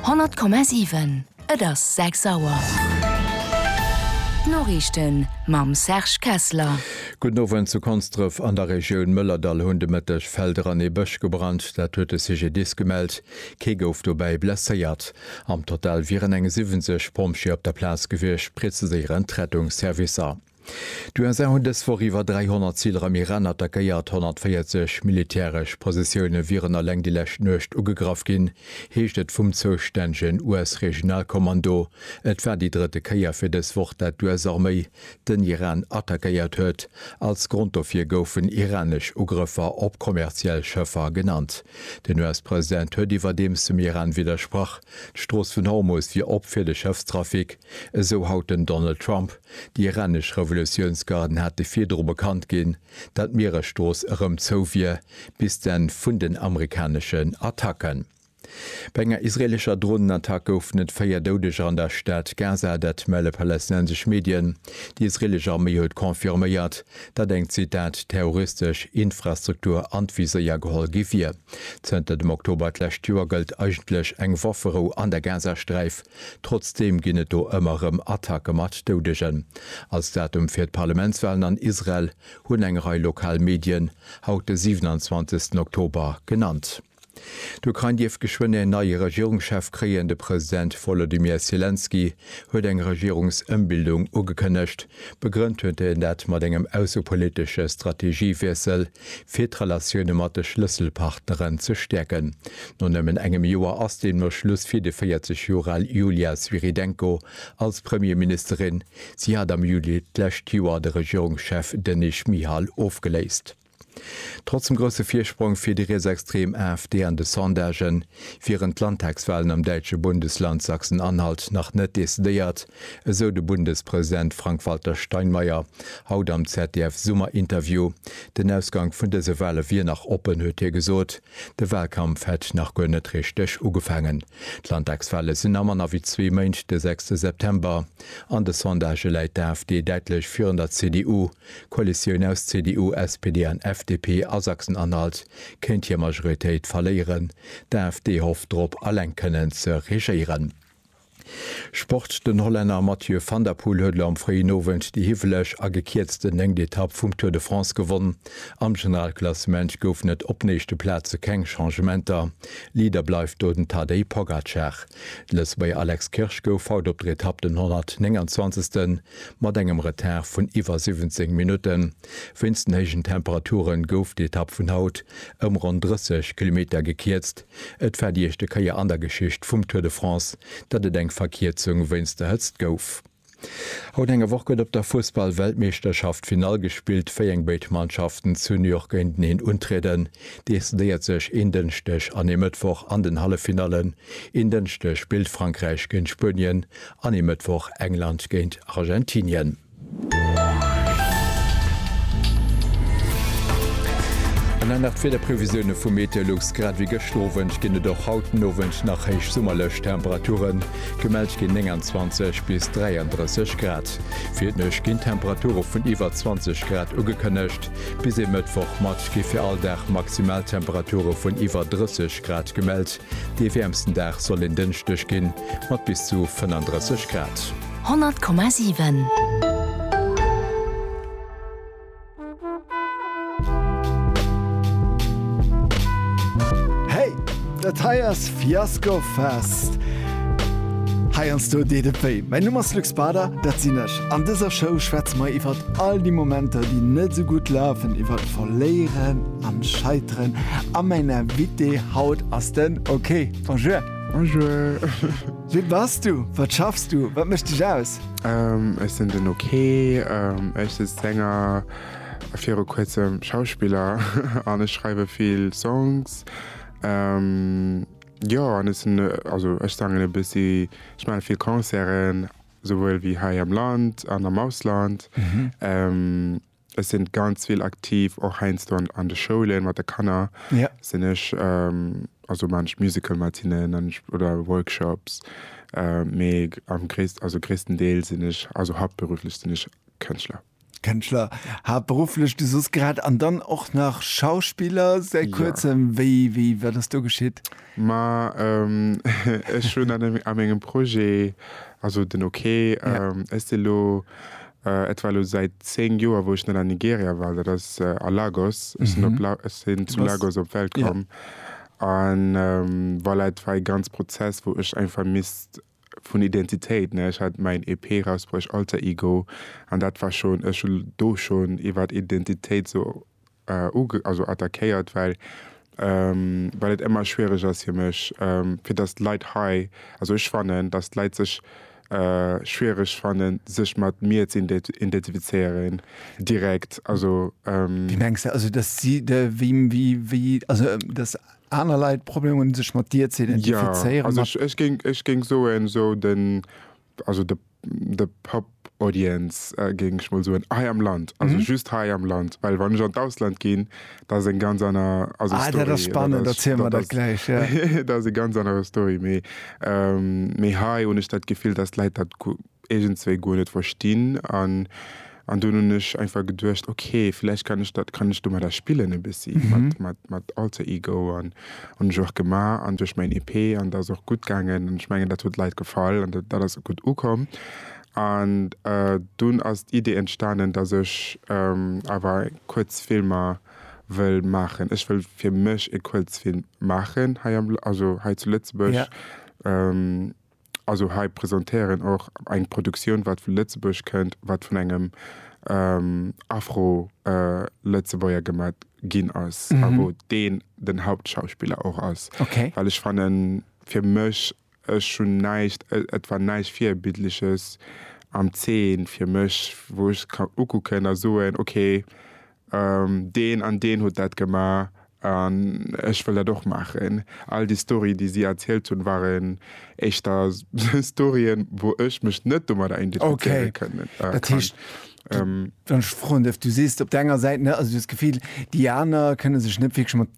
100,7 Et ass 6 Auer. D'Noriichten mam Serge Kessler. Gudden Owend. Zu Konsdref an der Regioun Mëllerdall hunn de Mëtteg Felder an ee Bësch gebrannt. Dat huet de CGDIS gemellt. Kee gouf dobäi blesséiert. Am Total wieren eng 70 Pompjeeë op der Plaz gewiescht, preziséieren d'Rettungsservicer. D'USA hunn dës Woch iwwer 300 Ziler am Iran attackéiert. 140 militäresch Positioune wieren eleng déi lescht Nuecht ugegraff ginn, heescht et vum zoustännegen US-Regionalkommando. Et war déi drëtte Kéier fir dës Woch, dat d'US-Arméi den Iran attackéiert huet. Als Grond dofir goufen iranesch Ugrëffer op kommerziell Schëffer genannt. Den US-President huet iwwerdeems dem Iran widdersprach, d'Strooss vun Hormus wier op fir de Schëffstrafic, esou haut den Donald Trump. Déi iranesch Revolutiounsgarden hate virdru bekannt ginn, datt d'Mieresstrooss erëm zou wier, bis d'Enn vun den amerikaneschen Attacken. Bei enger israeelescher Dronenattack goufen et véier Doudeger an der Stad Gaza, dat melle palästinensesch Medien. Déi israeelesch Arméi huet confirméiert, datt eng, Zitat, terroristesch Infrastruktur an d'Viséier geholl gi wier. Zënter dem Oktober d'lescht Joer gëllt eigentlech eng Wafferou an der Gazasträif. Trotzdeem ginn et do ëmmer erëm Attacke mat Doudegen. Als Datum fir d'Parlementswalen an Israel hunn eng Rei lokal Medien haut de 27 Oktober genannt. D'Ukrain dierft geschwënn en neie Regierungschef kréien. De President Wolodymyr Selenskyj huet eng Regierungsëmbildung ugekënnegt. Begrënnt huet en dat mat engem aussepolitesche Strategiewiessel. fir d'Relatioune mat de Schlësselpartneren ze stäerken. No nëmmen engem Joer ass deemno Schluss fir de 40 Joer al Yulia Svyrydenko als Premierministerin. Si hat am Juli d'lescht Joer de Regierungschef Denys Schmyhal ofgeléist. Trotz dem grousse Virsprong fir déi rietsextrem AfD an de Sondagen, wieren d'Landtagswalen am däitsche Bundesland Sachsen-Anhalt nach net decidéiert. Esou de Bundespresident Frank-Walter Steinmeier haut am ZDF-Summerinterview. Den Ausgank vun dëse Wale wier nach oppen, huet hie gesot. De Walkampf hätt nach guer net richteg ugefaangen. D'Landtagswale sinn a manner wéi zwee Méint, de sechste September. An de Sondagë läit d'AfD däitlech virun der CDU. D'Koalitioun aus CDU, SPD an FDP a Sachsen-Anhalt kéint hir Majoritéit verléieren. D'AfD hofft drop, eleng kënnen ze regéieren. Sport, Den Hollänner Mathieu van der Poel huet elo am fréien Owend déi hiwweleg a gekierzten néngt Etapp vum Tour de France gewonnen. Am Generalklassement goufen et op den éischte Plaze keng Changementer. Leader bleift do den Tadej Pogacar. De Lëtzebuerger Alex Kirsch gouf haut op der Etapp den 129. Mat engem Retard vun iwwer 17 Minutten wéinst den héijen Temperature gouf d'Etapp vun haut ëm ronn 30 Kilometer gekierzt. Et war déi éischte Kéier an der Geschicht vum Tour de France, datt et eng Verkierzung wéinst der Hëtzt gouf. Haut eng Woch gëtt op der Fussball-Weltmeeschterschaft d'Finall gespillt, wéi eng béid Mannschaften zu New York géinteneen untrieden, decidéiert sech een Dënschdeg an ee Mëttwoch an den Halleffinallen. Een Dënschdeg spillt Frankräich géint Spuenien an ee Mëttwoch England géint Argentinien. An dann nach d'Wiederprevisioune vu Meteolux, Grad ewéi gëschter Owend ginn et och haut den Owend nach héich summerlech Temperaturen. Gemellt ginn 29 bis 33 Grad. Fir d'Nuecht ginn Temperature vun iwwer 20 Grad ugekënnegt. Bis ee Mëttwoch mat gi fir all Dag Maximaltemperature vun iwwer 30 Grad gemellt. Dee wäermsten Dag soll en Dënschdeg ginn, mat bis zu 35 Grad. 100,7. Hey, dat hei ass Fiasco Fest! Heiansdo deet et wéi. Mäin Numm ass Luc Bader, dat sinn ech. An dëser Show schwätze mer iwwer all déi Momenter, déi net esou gutt lafen, iwwer d'Verléieren an d'Scheiteren. A mäin Invité haut ass den OK. Bonjour! Bonjour! Wie bass du? Wat schaffs du? Wat mécht dech aus? Ech sinn den OK, ech si Sänger, viru kuerzem Schauspiller an ech schreiwe vill Songs. Jo an ech sinn, also ech sangen e bëssi, ech maache vill Concerten, souwuel wéi hei am Land an am Ausland. Ech sinn ganz vill aktiv och heiansdo an an de Schoulen mat de Kanner yeah. sinn ech ähm, also man ech Musical Matinnen oder Workshops äh, mee am gréisst also gréissten Deel sinn ech also hauptberuflech sinn ech Kënschtler. Kënschtler hauptberuflech du sos grad an dann och nach Schauspieler se kurzem ja. wéi wéi wat ass do geschitt? Ma ähm, ech hunn an engem Projet also den okay yeah. ähm, ech si lo Et war elo säit 10 Joer wou ech net an Nigeria war, dat ass a Lagos. Ech sinn op La, ech sinn zu Lagos op d'Welt komm. An voilà, et war ee ganz Prozess wou ech eng vermisst vun Identitéit, ne, ech hat mäin EP rausbruecht, Alter Ego, an dat war schon, ech hunn do schon iwwert Identitéit sou also attackéiert well well et emmer schwiereg ass fir mech fir dass d'Leit hei, also ech fannen dass d'Leit sech schwiereg fannen sech mat mir ze identifizéieren direkt also. Wéi mengs de also dass si wéi also dass aner Leit Problem hunn sech mat dir ze identifizéieren? Jo also ech géing soen esou den. Also de de Pub Audience géing ech mol soen hei am Land, also just hei am Land, well wann ech an d'Ausland ginn, dat ass eng ganz aner, also Story. Ah dat ass spannend, erziel mer dat gläich, ja. Dat ass eng ganz aner Story, mee mee hei hunn ech dat Gefill, datt d'Leit dat iergendzwéi guer net verstinn an, An dunn hunn ech einfach geduecht, ok, vläicht kann ech dat, kann ech domadder spillen e bëssi mat mat Alter Ego an hunn ech och gemaach an duerch mäin EP an dat ass och gutt gaangen an ech mengen dat huet Leit gefall an dat ass gutt ukomm. An dunn ass d'Idee entstanen, dass ech awer Kuerzfilmer wëll maachen. Ech wëll fir mech e Kuerzfilm maachen hei am, also hei zu Lëtzebuerg. Also hei presentéieren och eng Produktioun wat vu Lëtzebuerg kënnt, wat vun engem Afro-Lëtzebuerger gemat ginn ass a wou deen den Hauptschauspiller och ass. Well ech fannen, fir mech, ech hunn näischt, et war näischt Virbildleches am Zeen fir mech, wou ech ka ukucken a soen, okay, Deen an deen huet dat gemaach an ech wëll dat och maachen. All déi Storye déi si erzielt hunn, waren éischter Storyen, wou ech mech net domadder identifizéiere kënnen. Okay, dat heescht, wann ech froen dierf, du sees op der enger Säit, also du hues d'Gefill, déi aner kënne sech net wierklech mat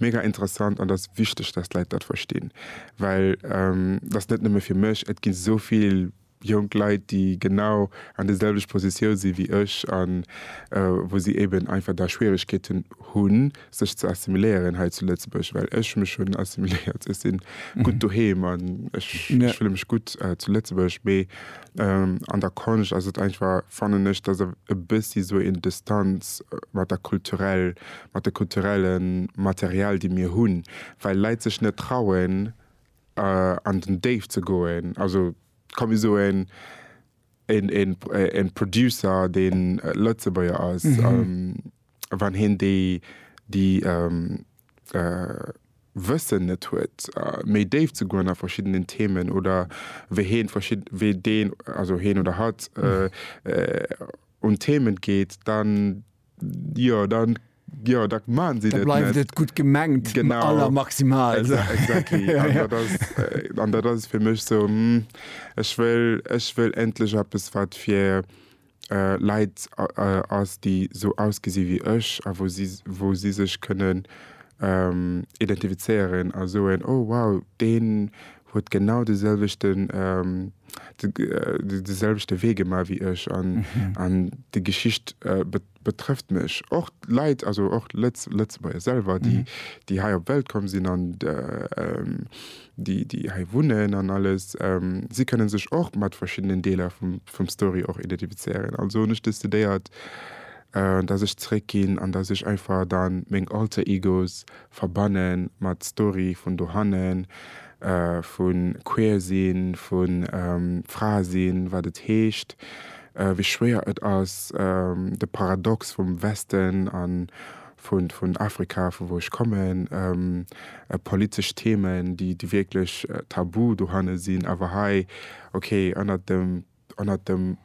Mega interessant an dass wichteg dass d'Leit dat verstinn, well dass net nëmme fir mech, et ginn esou vill jonk Leit déi genau an de selwecht Positioun sinn wéi ech an wou si eben einfach da Schwieregkeeten hunn sech ze assimiléieren hei zu Lëtzebuerg, well ech mech hunn assimiléiert, ech sinn gutt doheem an ech fillen mech gutt zu Lëtzebuerg, mee an der Konscht ass et einfach fannen ech dass e bëssi esou een Distanz mat der kulturell mat de kulturelle Material déi mir hunn, well Leit sech net trauen an den Déift ze goen. Also komm mir soen e Producer deen Lëtzebuerger ass, wann hien déi Wëssen net huet méi déif ze goen a verschiddenen Themen oder wéi hien wéi deen, also hien oder hatt, un Themen geet, dann Jo, dann, jo, da maachen si dat net. Da bleift et gutt gemengt, genau. Am aller maximal. Exactly. ja, ja. An dat ass fir mech sou, hm, ech wëll, ech wëll endlech eppes, wat fir äh, Leit äh, ass, déi sou ausgesi wéi ech a wou si, wou si sech kënnen ähm, identifizéieren a soen, oh wow, deen huet genau de selwechten de selwechte Wee gemaach wéi ech an an déi Geschicht betrëfft mech och Leit also och Lëtzebuerger selwer déi déi hei op d'Welt komm sinn an déi déi hei wunnen an alles. Si kënne sech och mat verschiddenen Deeler vum vum Story och identifizéieren. Also hunn ech decidéiert, datt ech zeréckginn an datt ech einfach dann meng Alter Egos verbanne mat Story vun dohannen, vu queer sinn, vu Fra sinn, wat et heescht, wéi schwéier et ass, de Paradox vum Westen a vun Afrika, vu wou ech kommen, politesch Themen, déi wierklech tabu dohanne sinn, awer hei, okay, ënnert dem. ënnert dem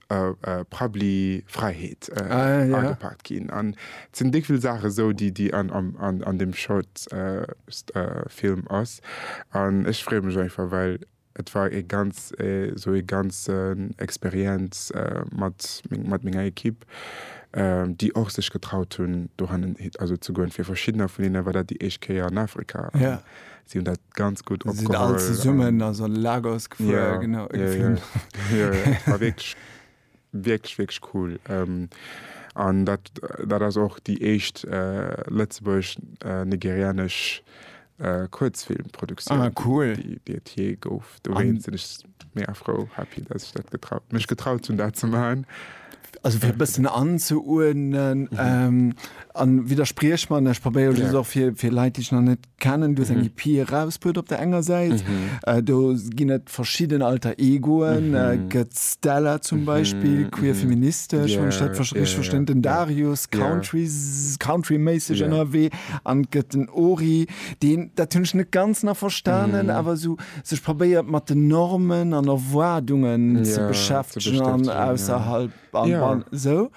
Parapluie Fräiheet agepaakt ginn. An et sinn déck vill Saache sou, déi déi an deem Short Film ass. An ech freeë mech einfach, well et war e ganz sou e ganzen Experienz mat mat menger Ekipp, déi och sech getraut hunn dohannen also ze goen. Fir verschiddener vun hinne war dat déi éischt Kéier an Afrika. Si hunn dat ganz gutt opgeholl. Si sinn all zesummen also an Lagos gefuer, yeah, genau. Yeah, geflunn. Yeah. yeah. war wirklich, wirklich, wirklich cool. Ähm, an dat, dat ass och déi éischt äh, lëtzebuerg-nigerianesch äh, äh, Kurzfilmproduktioun. Ah, cool. Déi, déi et je gouf. Do wéint sinn ech mega frou, happy, dass ich dat getraut, mech getraut hunn, dat ze machen. Also fir bëssen anzuuernen mhm. ähm, an widerspriech man, ech probéiere ja. och fir, fir Leiit, déi ich nach net Canon do seng EP erausbruet op der enger Säit. Do ginn et verschidden Alter Egoen, gëtt d'Stella zum Beispill, queer feministesch, wann ech dat richteg verstinn, den Darius, Country, countryméisseg ënnerwee an et gëtt den Ori, deen, dat hunn ech net ganz nach verstanen, awer esou sech probéiert mat den Normen an Erwaardungen ze beschäftegen an ausserhalb an esou.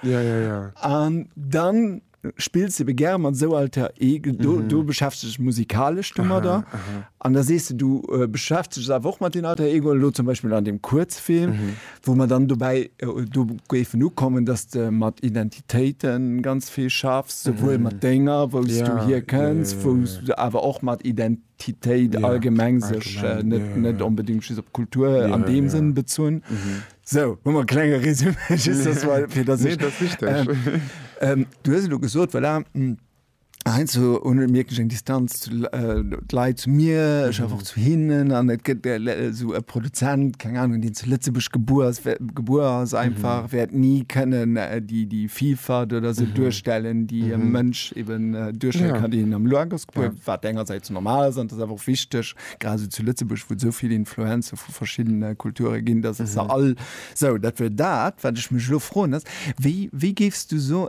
An dann spills ebe gär mat esou Alter Ego, mm -hmm. do beschäftigt ech musikalesch dummer da. An da sees du du äh, beschäftigt awer och mat den Alter Ego lo zum Beispiel an dem Kurzfilm, mm -hmm. wo man dann dobäi äh, do géifen ukommen, dass de mat Identitéiten ganz vill schaffst, souwuel mm -hmm. mat Dénger, wou ja, du hier kënns, ja, ja, ja. wou du awer och mat Identitéiten Identitéit ja, allgemeng sech äh, net ja, ja. net unbedingt op Kultur ja, an dem ja. Sinn bezunn. Mhm. Sou, hu mer e klenge Résumé, just dass mal, fir dass Nee, ech, dat sicht ech. ähm, du hues elo gesot, voilà, hm, heiansdo hunn ech wierklech eng Distanz zu L- äh, d'Leit zu mir, ech einfach zu hinnen an et gëtt äh, le- sou e Produzent, keng Ahnung, deen zu Lëtzebuerg gebuer ass, wär, gebuer ass einfach, wäert ni kënnen äh, déi, déi Vielfalt oder sou duerstellen, déi e Mënsch eben äh, duerstelle Ja. kann, deen am Lagos gebuer, wat engersäits normal ass an dat ass awer och wichteg, grad esou zu Lëtzebuerg, wou et esou vill Influencer vu verschiddene Kulture ginn, dass se all esou, dat wier dat, wat ech mech elo froen, ass, wéi, wéi géifs du so,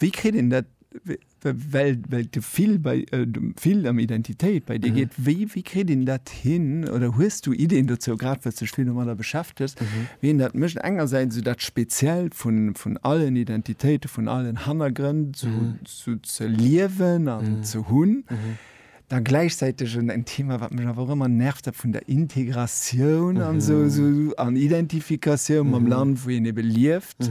wéi kritt een dat, wéi, well, well d'Gefill bei, d'Gefill ëm Identitéit bei dir geet, wéi, wéi kritt een dat hin oder hues du Ideen dozou, grad well s du dech vill domadder beschäftegs, wéi een dat mécht, engersäits esou dat Speziellt vun, vun allen Identitéite, vun allen Hannergrënn esou, esou ze liewen an ze hunn? Da gläichzäiteg en, en Thema, wat mech awer och ëmmer nervt hat, vun der Integratioun an esou, esou an Identifikatioun mam Land, wou een ebe lieft.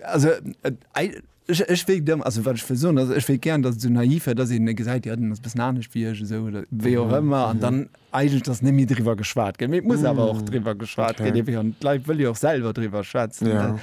Also et, ech, ech wéilt ëmmer, also wat ech wëll soen, also ech wéilt gären, datt et esou naïf wär, datt een e gesäit, jo deen ass e bëssen anescht wéi ech esou oder wéi och ëmmer an dann eigentlech, datt net méi driwwer geschwat gëtt. Mee et muss awer och driwwer geschwat ginn, ewéi, an d'Leit wëlle jo och selwer driwwer schwätzen.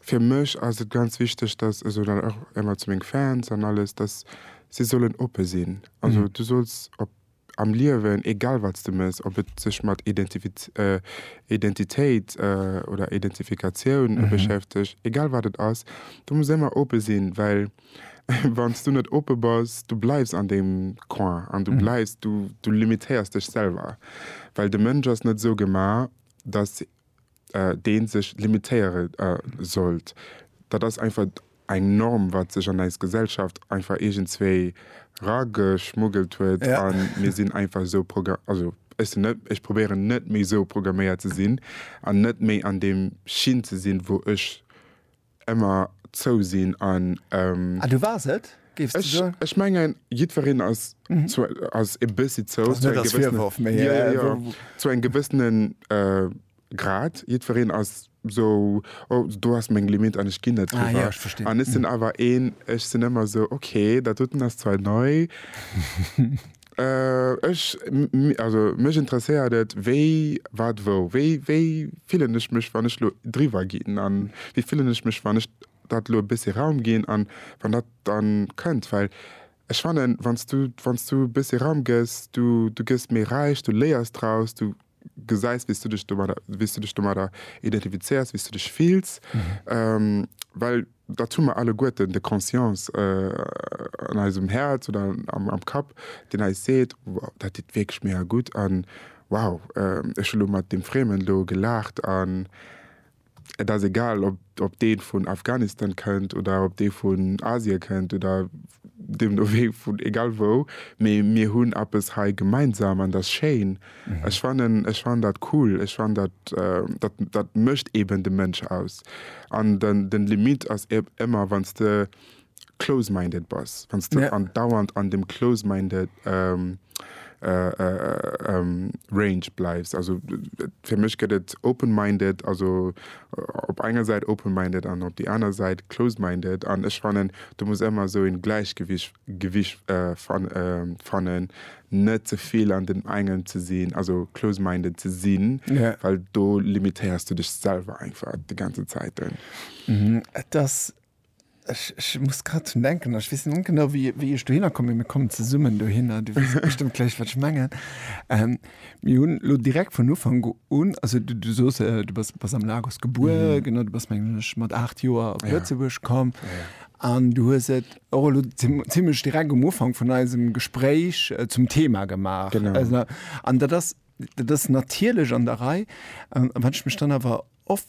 Fir mech ass et ganz wichteg, dass, also dann och émmer zu meng Fans an alles, dass si sollen oppe sinn. Also du solls op, am Liewen, egal wat s de méchs, ob et sech mat Identifiz, Identitéit oder Identifikatioun beschäftegt, egal wat et ass, du muss émmer oppe sinn, well wann s du net oppe bass, du bleifs an deem Coin an du bleifs, du limitéiers dech selwer, well de Mënsch ass net esou gemaach, dass dee sech limitéiere sollt. Dat ass einfach eng Norm, wat sech an eis Gesellschaft einfach iergendzwéi rageschmuggelt huet a mir sinn einfach esou programméiert, also ech sinn net, ech probéieren net méi esou programméiert ze sinn an net méi an deem Schinn ze sinn, wou ech Emmer zou sinn an. Ah, du wars et, géifs de Ech, soen? ech mengen, jiddwereen ass zu, ass e bëssi zou, Ass zu net engem als gewëssenen, Virworf, mee jo, jo, jo, wou. zu engem gewëssenen äh, Grad. Jiddwereen ass sou, oh, do ass meng Limit an ech ginn net Ah, jo, driwwer. ech verstinn. An ech sinn awer een, ech sinn ëmmer sou, okay, dat doten ass zwar nei. Ech, also mech interesséiert et, wéi, wat, wou. Wéi, wéi fillen ech mech, wann ech elo driwwer ginn? A wéi fillen ech mech, wann ech dat elo e bëssche Raum ginn an wann dat dann kënnt? Well ech fannen, wann s du, wann s du e bëssche Raum gëss, du, du gëss méi räich, du léiers draus, du, gesäis, wéi s du dech domadder, wéi s du dech domadder identifizéiers, wéi s du dech fills, well dat hu mer alleguerten, de Conscience an eisem Häerz oder am Kapp, deen eis seet, wow, dat deet wierklech mega gutt an wow, ech hu lo mat deem Friemen do gelaacht an Et ass egal, ob, ob dee vun Afghanistan kënnt oder ob dee vun Asien kënnt oder deem do wéi vun egal wou, mee mir hunn eppes hei gemeinsam an dat ass schéin. Ech fannen, ech fannen dat cool. Ech fannen dat, dat, dat mécht eeben de Mënsch aus. An den, den Limit ass ëmmer, wann s de close-minded bass, wann s de andauernd an dem close-minded Range bleifs. Also fir mech gëtt et open-minded, also op enger Säit open-minded an op déi aner Säit close-minded. An ech fannen, do muss ëmmer esou en Gläichgewicht fannen, net ze vill an deem engen ze sinn, also close-minded ze sinn, well do limitéiers du dech selwer einfach déi ganzen Zäiten. Et ass Ech, ech muss grad drun denken, ech weess net genau, wéi, wéi ech dohinner komm, mee mir kommen zesummen dohinner, du weess bestëmmt gläich, wat ech mengen. Ähm, mir hunn lo direkt vun Ufank un, also du, du soos, äh, du bass, bass am Lagos gebuer, mhm. genau, du bass, mengen ech, mat 8 Joer op Lëtzebuerg ja. komm. Ja. An du hues et och elo zimmlech direkt um Ufank vun eisem Gespréich äh, zum Thema gemaach. Genau. Also, an dat ass, dat ass natierlech an der Rei. An wann ech mech dann awer oft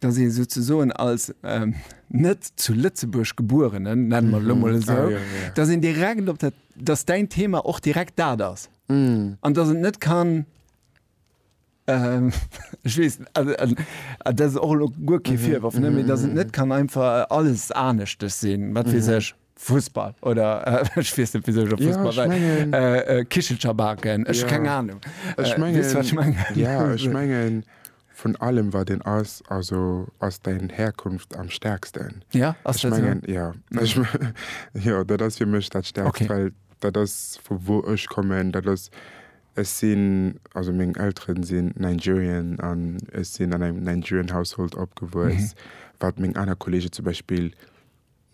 dass ee souzesoen als net zu Lëtzebuerg Gebuerenen, nenne mer et elo mol esou, dass een direkt op dat, dass däin Thema och direkt dat ass an dass et net kann, ech weess, an dat ass och elo guer kee Virworf, mä dass et net kann einfach alles Aneschtes sinn, wat weess ech. Fussball oder ech weess net wisou ech op Fussball war. Ja, ech mengen. Kichelcher baken, ech keng Ahnung. Ech mengen. Weess wat ech mengen? Ja, ech mengen vun allem wat een ass, also ass däin Herkunft am stärksten. Ja, ass dat esou? Ja, ech jo dat ass fir mech dat stärkst. Okay. Well dat ass vu wou ech kommen, dat ass, ech sinn, also meng Elteren sinn Nigerian an ech sinn an engem Nigerian Household opgewuess. Wat meng aner Kollegen zum Beispill.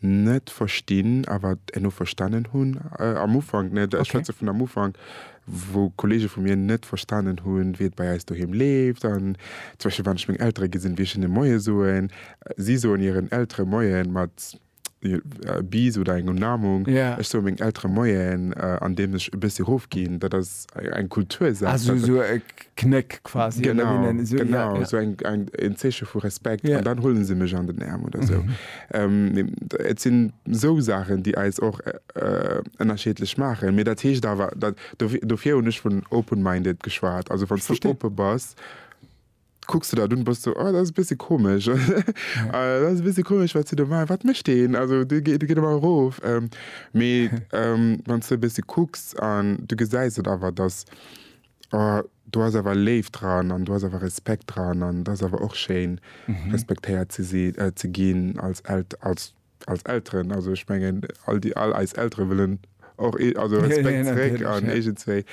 net verstinn a wat elo verstanen hunn am Ufank, net ech schwätze vun am Ufank, wou Kollege vu mir net verstanen hunn, wéi et bei eis doheem leeft an zum Beispill, wann ech meng Eltere gesinn, wéi ech hinne Moie soen. Si soen hiren Eltere Moien mat Bis oder eng Umarmung. Ech soe mengen Eltere Moien, andeems ech e bëssi erofginn. Dat ass eng Kultursaach. Knéck quasi. Genau, genau, esou eng, eng, en Zeeche vu Respekt, an dann huele se mech an den Äerm oder esou. Et sinn esou Saachen, déi eis och ënnerschiedlech maachen. Mee dat heescht awer, dat, dofir hunn ech vun open-minded geschwat, also wann s du oppe bass, kucks de dat un, bass du, oh, dat ass e bësse komesch, dat ass e bësse komesch, wat se do maachen, wat mécht deen, also dee geet ëmmer erof. Mee wann s du e bësse kucks an du gesäis et awer, datt. Oh, do ass awer Léift dran an do ass awer Respekt dran an et ass awer och schéin, respektéiert ze ginn als Elteren. Also ech mengen, all eis Eltere wëllen och Respekt zeréck an iergendzwéi.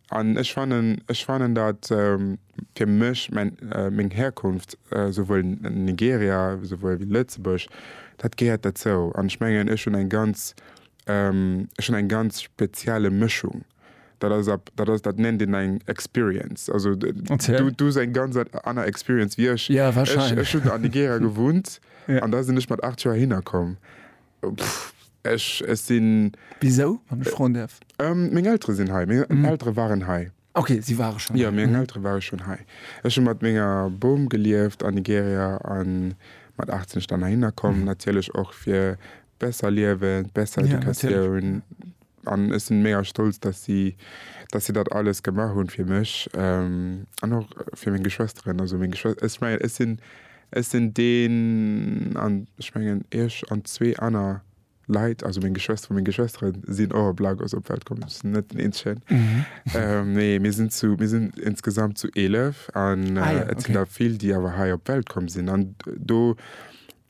An ech fannen, datt fir mech meng Herkunft, souwuel Nigeria souwuel wéi Lëtzebuerg, dat gehéiert derzou. An ech mengen, ech hunn eng ganz spezielle Mëschung. Dat ass ab, dat ass, dat nennt een eng Experience. Also du, du hues eng ganz aner Experience wéi ech. Ja, wahrscheinlech. Ech, ech hunn an Nigeria gewunnt ja. an da sinn ech mat 8 Joer hinner komm. Ech, ech sinn. Wisou, wann ech froen däerf? Ähm, meng Eltere sinn hei. Meng mhm. Eltere waren hei. Okay, si ware schon. Ja, meng mhm. Eltere ware schon hei. Ech hun mat menger Boom gelieft an Nigeria an mat 18 dann hinnerkommen mhm. natierlech och fir besser liewen, besser Educatioun an ech sinn mega stolz dass si dass si dat alles gemaach hunn fir mech an och fir meng Geschwësteren. Also meng Geschwës ech mengen ech sinn ech sinn deen an ech mengen iech an zwee aner Leit, also meng Geschwësteren, meng Geschwëstere sinn och op Lagos op d'Welt komm, ech sinn net den eenzegen. Nee mir sinn zu mir sinn insgesamt zu 11 an et sinn der vill déi awer hei op d'Welt komm sinn an do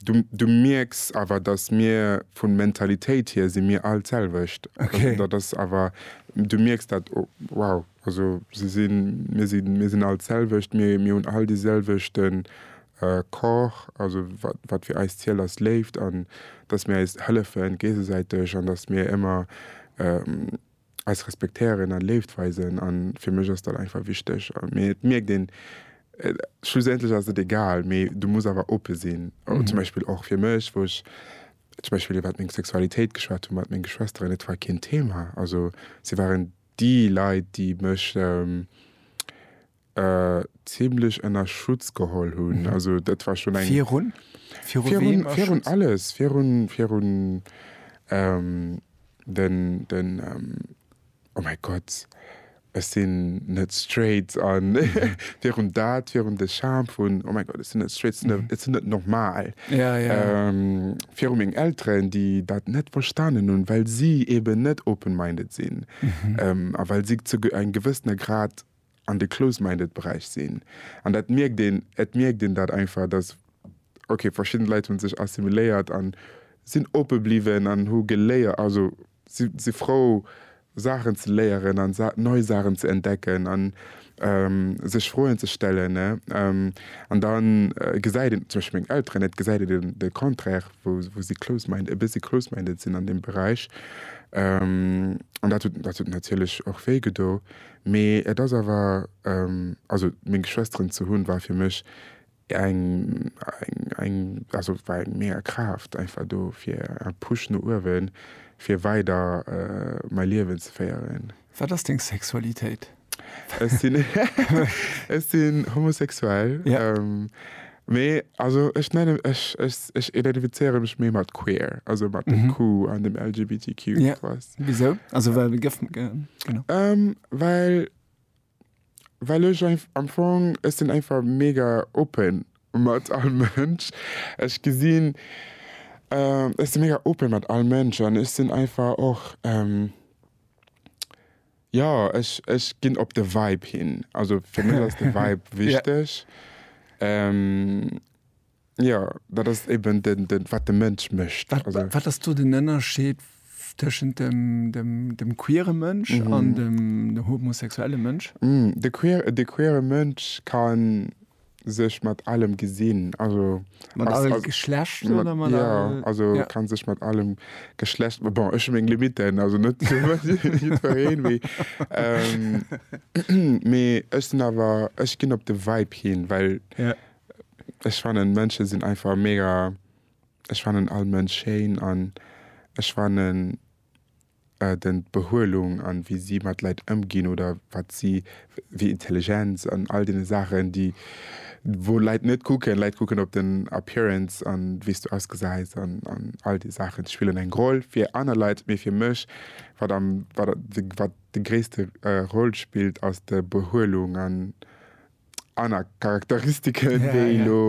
Du mierks awer, datt mir vu Mentalitéit hier si mir all d'selwecht. Dat ass awer, du mierks dat, wow, also se sinn, mir sinn, mir sinn all d'selwecht, mir hunn all dee selwechte Corps, also wat fir eis zielt ass Léift an datt mir eis hëllefe géigesäiteg an datt mir ëmmer eis respektéieren a Léift weisen. A fir mech ass dat einfach wichteg. Mee et mierkt een, schlussendlech ass et egal, mee du muss awer oppe sinn. An zum Beispill och fir mech, wou ech zum Beispill iwwert meng Sexualitéit geschwat hu mat menge Schwesteren, et war keen Thema. Also si waren déi Leit, déi mech. Zimlech ënner Schutz geholl hunn. Also dat war schonn eng. Virun? Virun wem? Virun, virun alles. Virun, virun ähm, den, den ähm, oh mäi Gott, ech sinn net straight an virun dat, virun de Charme vun, oh mäi Gott, ech sinn net straight, ech sinn net normal. Ja, ja. Ähm, virun meng Elteren, déi dat net verstanen hunn, well si eeben net open-minded sinn. Ähm, a well si zu eng gewëssener Grad an de close-minded Beräich sinn an dat mierkt een, et mierkt een dat einfach, dass ok verschidden Leit hunn sech assimiléiert an sinn oppe bliwwen an hu geléier, also si si frou Saachen ze léieren an Sa nei Saachen ze entdecken an sech Froen ze stellen ne an da gesäit een zum Beispill meng Elteren, et gesäit een den de Contraire wou wou si close-mind e bëssi close-minded sinn an deem Beräich an dat huet dat huet natierlech och wéi gedo Mee et ass awer, also meng Geschwesteren ze hunn war fir mech eng, eng, also war eng mega Kraaft einfach do fir en Push no uewen fir weider mäi Liewen ze féieren. Wat ass deng Sexualitéit? Ech sinn, ech sinn homosexuell. Mee also ech nennen, ech, ech, ech identifizéiere mech méi mat queer, also mat dem Q an dem LGBTQ, Ja. weißt. Wisou? Also well de gëff, ge, genau. Ähm, well, well ech einf, am Fong, ech sinn einfach mega open mat all Mënsch. Ech gesinn, ähm, ech si mega open mat all Mënsch an ech sinn einfach och, ähm, Jo, ech ech ginn op de Vibe hin. Also fir mech ass de Vibe wichteg. Jo, dat ass eben den den wat de Mënsch mécht. Wat ass do den Ënnerscheed tëschent dem dem dem queere Mënsch an dem homosexuelle Mënsch? De queere Mënsch kann. sech mat allem gesinn also mat allem Geschlecht also, mat, mat ja, allem, also ja. kann sech mat allem Geschlecht bon, ech eng Limiten also net méi ech sinn awer ech ginn op de Weib hin well ja. ech fanen Mënsche sinn einfach mega ech fanen all Mënsch schéin an ech fanen den d'Behuelung an wéi si mat Leit ëmginn oder wat si wéi Intelligenz an all deene Saachen déi wou Leit net kucken. Leit kucken op den Appearance an wéis du ausgesäis an an all déi Saachen spillen eng Roll fir aner Leit. Mee fir mech wat am wat de wat de gréisste Roll spillt ass de Behuelung an aner Charakteristiken wéi elo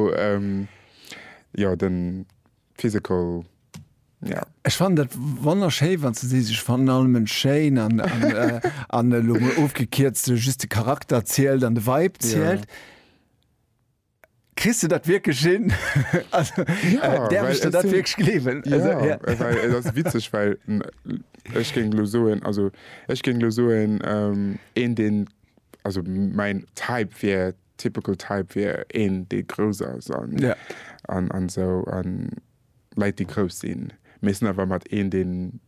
jo den Physical, ja. Ech fannen dat wonnerschéi wann s de sees, ech fannen all Mënsch schéin an an elo mol ofgekierzt just de Charakter zielt an de Vibe zielt. Kriss de dat wierklech hin? Also däerf ech der dat wierklech gleewen? Jo, well et ass witzeg, well ech géing elo soen, also ech géing elo soen een deen, also mäin Type wier. Typical type wier een dee grouss ass an an esou an Leit déi grouss sinn mee sinn awer mat een deen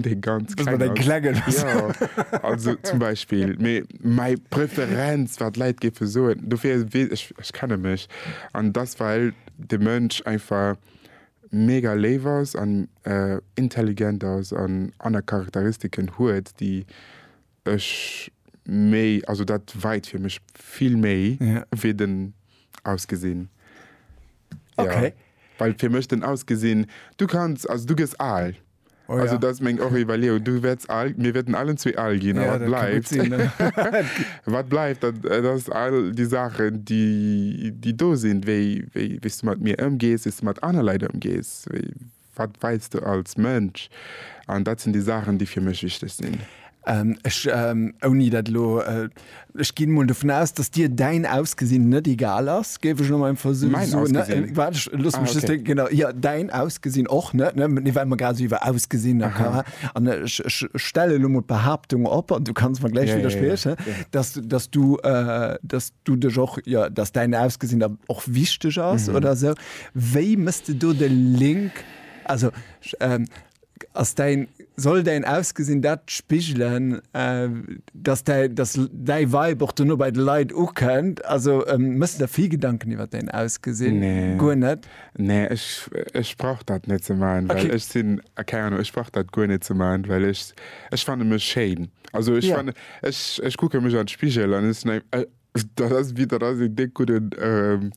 dee ganz kleng ass jo also zum Beispill mee mäi Preferenz wat Leit géife soen dofir wee ech ech kenne mech an dass well de Mënsch einfach mega léif ass an intelligent ass an aner Charakteristiken huet déi Ech méi, also dat weit fir mech vill méi wéi den Ausgesinn. Ok. Well fir mech den Ausgesinn, du kanns, also du gëss al. Oh ja. Dat ass meng och Iwwerleeung, du wäerts al, mir wäerten allen zwee al ginn. A wat bleift? Ja, dat ka gutt sinn. Wat bleift, dat ass all déi Saachen, déi do sinn, wéi s du mat mir ëmgees, wéi s du mat aner Leit ëmgees, Wat weils du als Mënsch? An dat sinn déi Saachen, déi fir mech wichteg sinn. Ech, ouni dat elo, ech ginn emol dovun aus, datt dir däin Ausgesinn net egal ass, géif ech elo mei emfalls esou soen. Mäin Ausgesinn? Waart, ech loosse mech just. Ah, okay. Genau, jo, däin Ausgesinn och net, ne? Mee well mer grad esou iwwer Ausgesinn a. Aha. An ech, ech stelle elo emol d'Behaaptung op, an du kanns mer gläich widderspriechen. Jo, jo, jo, jo. Datt, datt du, datt. du dech och jo dass däin Ausgesinn der och wichteg ass oder esou. Wéi mëss de do de Link? Also ass däin soll däin Ausgesinn dat spigelen, dass däi dass däi Vibe och dono bei de Leit ukënnt? Also mëss de der vill Gedanken iwwer däin Ausgesinn? Guer net? Nee, ech ech brauch dat net ze maachen, well ech sinn, keng Ahnung, ech brauch dat guer net ze maachen, well ech ech fanne mech schéin. Also ech ja. ech, ech kucke mech an den Spigel an ech denk, äh, dat ass wie dat ass en dick guten ähm,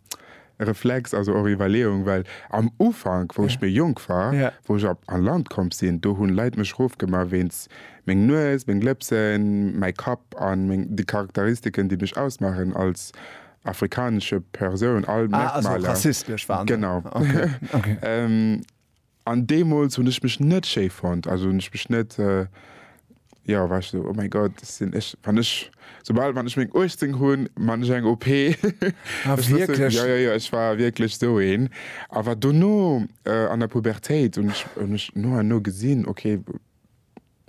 Reflex also och Iwwerleeung, well am Ufank, wou ja. ech mir jonk war, ja. wou ech op an Land kom sinn, do hunn Leiit mech rofgemmer wes meng Nues, meng Lëpsen, mei Kapp an meng, die Charakteristiken, déi mech ausmachen als afrikanesche Persoun all ah, also rassistesch waren. Genau. Okay. Okay. ähm, An deemools hunn ech mech net schéi fonnt, also hunn ech mech net, jo, war ech esou, oh mäi Gott, dat sinn ech. Wann ech, soubal, wann ech meng 18 hunn, man ech eng OP. Ah, wierklech? Jo, jo, jo, ech war wierklech esou een. Awer dono, an der Pubertéit, hunn ech, hunn ech no an no gesinn, okay,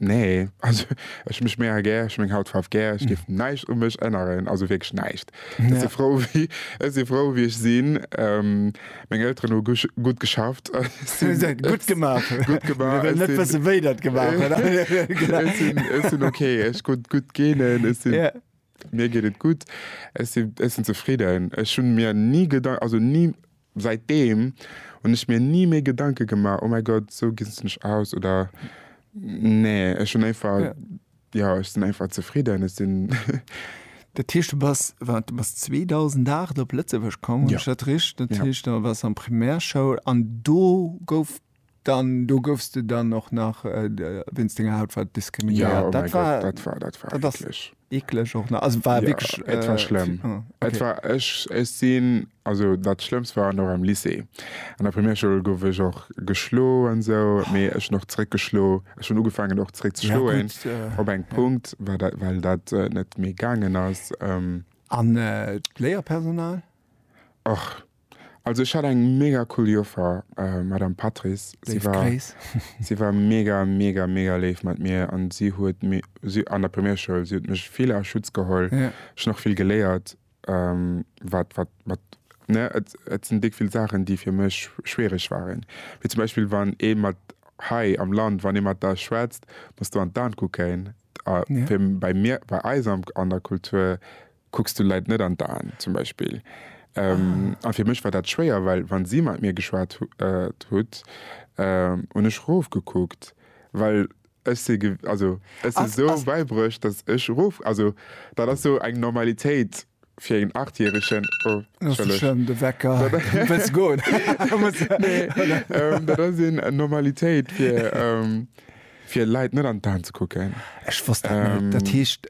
Nee, also ech mech mega gär, ech hu meng Hautfaarf gär, ech géif näischt u mech änneren, also wierklech näischt. Ech si frou, wéi ech si frou, wéi ech sinn. Meng Elteren hu gutt geschafft. Gutt gemaach. Gutt gemaach. Mir wëllen net wëssen, wéi der et gemaach hutt. Ech sinn ok, ech hu gutt Genen, ech sinn, mir geet et gutt, ech sinn zefridden. Ech hu mir ni Gedanken, also ni, Säit deem hunn ech mir ni méi Gedanke gemaach, oh mäi Gott, esou ginn se mech aus oder nee. Ech hunn einfach, jo, ech sinn einfach zefridden. Ech sinn. Dat heescht, du bass, wat, du bass 2008 op Lëtzebuerg komm, hu ech dat richt? Dat heescht, da waars du an Primärschoul an do gouf Dann do gouffs de dann och nach wéinst denger Hautfaarf diskriminéiert. Dat war dat war dat war wierklech eklech och nach. Also war wierklech et war schlëmm. Et war ech ech sinn also dat schlëmmst war nach am Lycée. An der Primärschoul gouf ech och geschlo an esou, mee ech hunn och zeréck geschlo. Ech hunn ugefaangen och zeréck ze schloen op engem Punkt war dat well dat net méi gaangen ass. An d'Léierpersonal? Och Also ech hat eng mega cool Joffer, Madame Patrice. Si war, si war mega, mega, mega léif mat mir an si huet si, an der Primärschoul, si huet mech vill a Schutz geholl. Yeah. Ech hunn och vill geléiert, wat, wat, wat, ne, et, et sinn déck vill Saachen, déi fir mech schwiereg waren. Wéi zum Beispill, wann ee mat, hei am Land, wann ee mat der schwätzt, muss de an d'An kucken. A fir, bei mir, bei eis an der Kultur Kucks du Leit net an d'Aen, zum Beispill. A fir mech war dat schwéier, well wa si mat mir geschwat hutt, hunn ech rofgekuckt, well ech si, also ech si sou bäibruecht, datt ech rof, also dat ass sou eng Normalitéit fir een Achtjäregen. Oh, entschëllegt. De Wecker, du wëlls goen. Dat ass eng Normalitéit fir Leit net an d'Aen ze kucken. Ech wosst dat net. Dat heescht,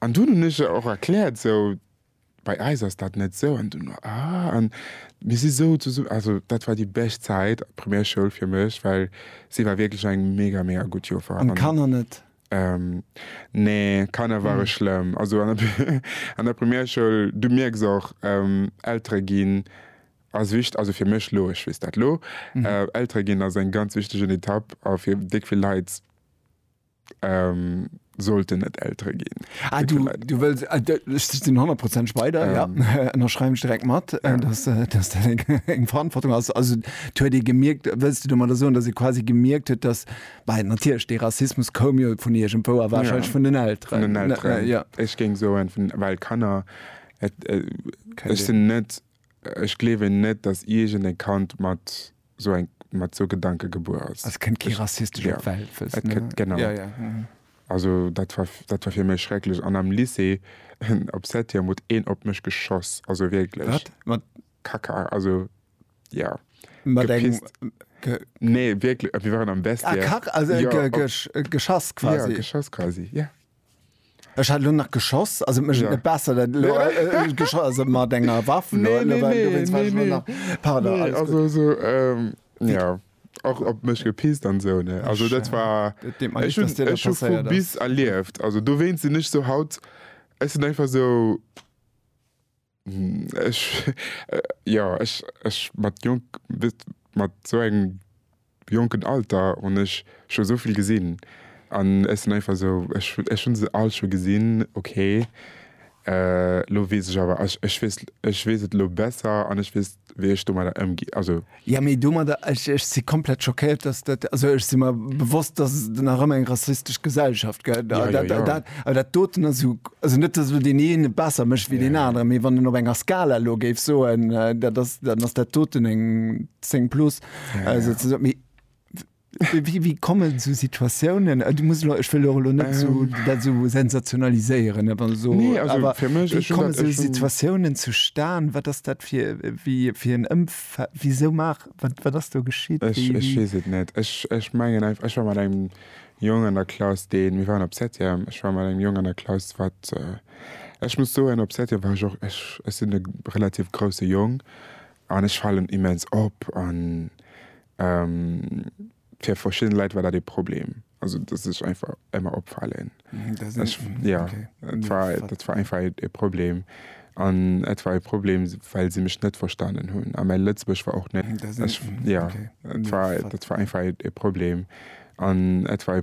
An dunn hunn ech der och erkläert, esou, bei eis ass dat net esou. An dunn war, ah, an mir si esou zesum-, also dat war déi bescht Zäit, Primärschoul fir mech, well si war wierklech eng mega, mega gutt Joffer. An d'Kanner net? Nee, d'Kanner ware schlëmm. Also an der, an der Primärschoul, du mierks och, Eltere ginn ass wicht-, also fir mech elo, ech weess dat elo, Eltere ginn ass eng ganz wichtegen Etapp a fir déck vill Leit, Sollten et Eltere ginn. Ah, du, du wëlls, ah, ech sinn 100 Prozent Speider, ähm. ja. Ënnerschreiwen ech direkt mat, ja. dass, äh, dass dat eng, eng Verantwortung ass. Also, huet ee gemierkt, wëlls du domadder soen, dass ee quasi gemierkt huet, dass, well natierlech, dee Rassismus koum jo vun iergendwou a wahrscheinlech ja. vun den Elteren. Vun den Elteren. Ja. Ech géing soen, vun, well Kanner, et, äh, ech sinn net, ech gleewen net, dass iergend e Kand mat sou eng mat sou Gedanke gebuer ass. Also kënnt kee rassistesch op d'Welt, wëlls du. Et kënnt, genau. Ja, ja. Also dat war, dat war fir mech schrecklech. An am Lycée, op Septième, huet een op mech geschoss, also wierklech. Wat? Mat. Kacka, also, ja. Mat engem. Gepisst. Ge. Nee, wierkle, mir waren am Vestiaire. Ah, Kach, also, ge, ge, geschass quasi. Ja, geschoss quasi, ja. Ech hat lo nach geschoss, also mech net besser dat lo geschoss mat enger Waff. Nee, nee, nee, nee, nee. Pardon, nee, also so, ähm, ja och op mech gepisst an sou ne, also dat war ech hun ech hu vu bis erlieft, also dowéinst sin ech sou haut ech sin einfach sou. Ech, jo, ech, ech mat jonk, wétt mat esou engem jonken Alter hunn ech scho esou vill gesinn an ech sinn einfach esou, ech, ech hunn se all scho gesinn, ok. Elo weess ech awer, ech, ech weess, ech weess et elo besser an ech weess, wéi ech domadder ëmgi, also. Ja, mee domadder, ech, ech si komplett schockéiert, dass dat, also ech si mer bewosst, dass et nach ëmmer eng rassistesch Gesellschaft gëtt. Ja, ja, ja. Dat, awer dat doten ass jo, also net, dass elo deen een et besser mécht wéi deen aneren, mee wann een op enger Skala elo géif soen, dat ass, dann ass dat doten eng 10 plus, souzesoen. Mee. Wéi komme sou Situatiounen? Ech wëll jo elo net dat esou sensationaliséieren, awer sou wéi komme sou Situatiounen zustan? Wat ass dat fir en Ëmfeld? Wisou maach, wat ass do geschitt? Ech weess et net. Ech mengen einfach, ech war mat engem Jong an der Klass, deen, mir waren op Septième, ech war mat engem Jong an der Klass, wat, ech muss soen, op Septième war ech och, ech sinn e relativ grousse Jong an ech falen immens op an Fir verschidden Leit war dat ee Problem. Also dat sech einfach ëmmer opfalen. Ja dat war einfach e Problem. An et war e Problem, well se mech net verstanen hunn. A mäi Lëtzebuergesch war och net. Ja dat war einfach e Problem. An et war e.